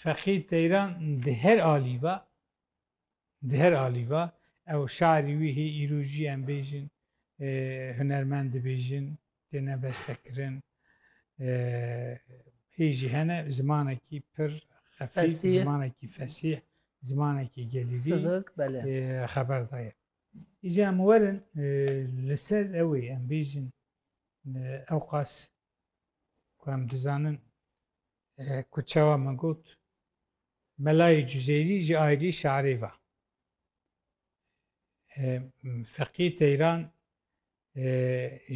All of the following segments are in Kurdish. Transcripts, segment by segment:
Feqî Teyran di her alî va, di her alî va, ew şarî wî hê îro jî em bêjin hunermend dibêjin, têne bestekirin. Hê jî hene zimanekî pir xefîf, zimanekî fesîh, zimanekî gelîvî xeber daye. Îca em werin li ser ewê em bêjin ewqas ku em dizanin Ku çawa min got Melayê Cuzêrî ji ailî şarê va. Feqî Teyran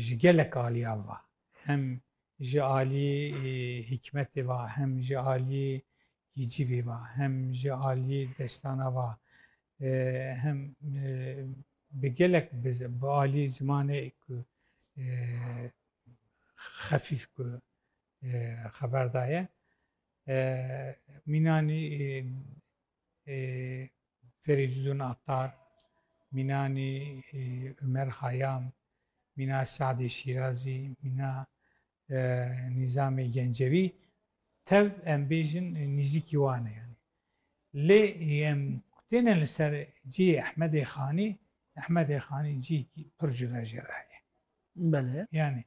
ji gelek aliyan va. Hem ji alî hîkmetê va, hem ji alî hîcivê va, hem ji alî destana va, hem bi gelek bi alî zimanê ku xefîf ku xeber daye. Mînanî Ferîdûdûn Attar, mînanî Umer Hayam, mîna Se'dê Şîrazî, mîna Nîzamê Gencevî tev em bêjin nîzîkî wan e. Lê em têne li ser cihê Ehmedê Xanî, Ehmedê Xanî cihekî pir cuda jê re heye. Belê. Yanî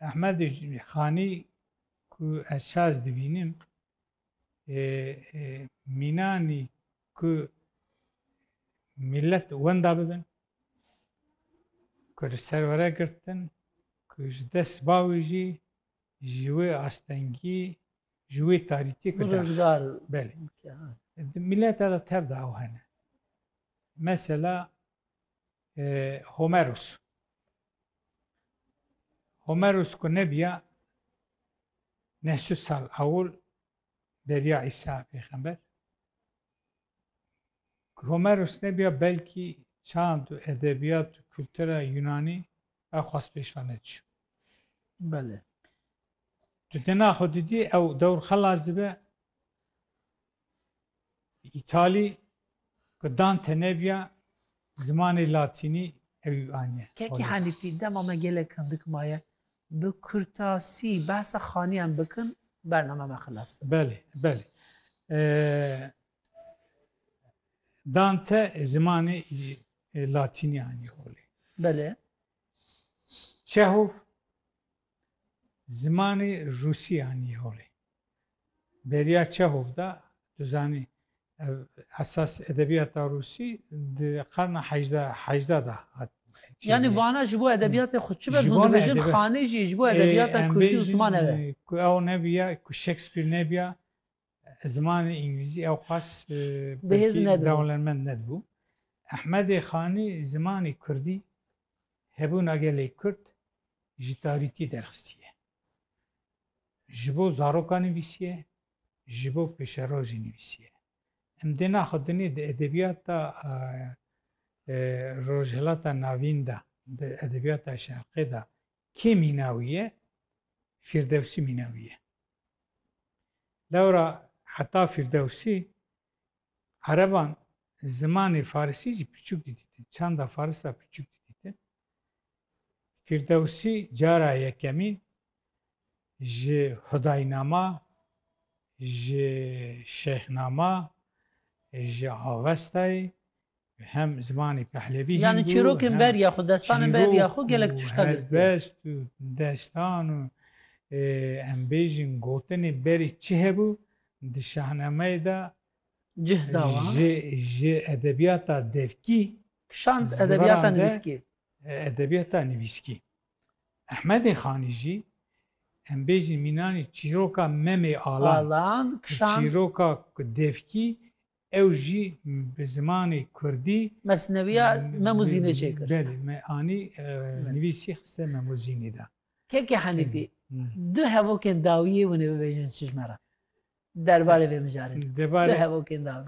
Ehmed Xanî ku ez saz dibînim mînanî ku millet wenda bibin ku li ser were girtin ku ji dest bawê jî ji wê astengî ji wê tarîtî ku rizgar belê di mileta de tev de ew hene mesela Homeros Homeros ku nebiya neh su sal ewil beriya Îsa pêxember ku Homeros nebiya belkî çand û edebiyat û kultura Yunanî ew xwest pêşva nediçû. Belê. Tu tena xwe didî ew dewr xelas dibe Îtalî ku Dante nebîya zimanê latînî ewî aniye. Kekî Henîfî, dema me gelek hindik maye bi kurtasî behsa xaniyan bikin bername me xilas dibe. Belê, belê. Dante zimanê latînî aniye holê. Belê. Çehof Zimanê Rûsî anî holê. Beriya Çehov de tu zanî ev esas edebiyata Rûsî di qarna heyjda heyjda de hat Yanî vana ji bo edebiyatê xwe çi be hûn dibêjin xanê jî ji bo edebiyata Kurdî û ziman ev e. Ku ew nebîya, ku Shakespeare nebîya Zimanê îngilîzî ewqas pirtî dewlemend nedibû. Ehmedê Xanî zimanê kurdî, hebûna gelê kurd ji tarîtî derxistiye. Ji bo zarokan nivîsiye, ji bo pêşerojê nivîsiye. Em dê naxwedinê di edebiyata Rojhilata Navîn de, di edebiyata Şerqê de Kê mînawî ye? Fîrdewsî mînawî ye. Lewra heta Fîrdewsî ereban zimanê farisî jî piçûk didîtin. Çanda faris ra piçûk didîtin. Fîrdewsî cara yekemîn ji Hudaynama, ji Şêxnama, ji Avestayê Hem zimanê Pehlevî Yanî hînd û çîrokên hem ber ya xwe, destanên ber ya çîrok xwe gelek û tişta girtiye. helbest û destan û e, em bêjin gotinê berî çi hebû di Şahnameyê de Cih dawa. ji ji edebiyata devkî Şand Ziran edebiyata de- nivîskî. e, edebiyata nivîskî. Ehmedê Xanî jî em bêjin mînanî çîroka Memê Alan, Alan, kişand. çîroka devkî Ew jî bi zimanê kurdî. Mesnewiya Memo Zînê çêkir. Belê, me anî nivîsî xiste Memo Zînê de. Keke Henîfî, du hevokên dawiyê hûn ê bibêjin çijme re derbarê vê mijarê de? Du hevokên dawî.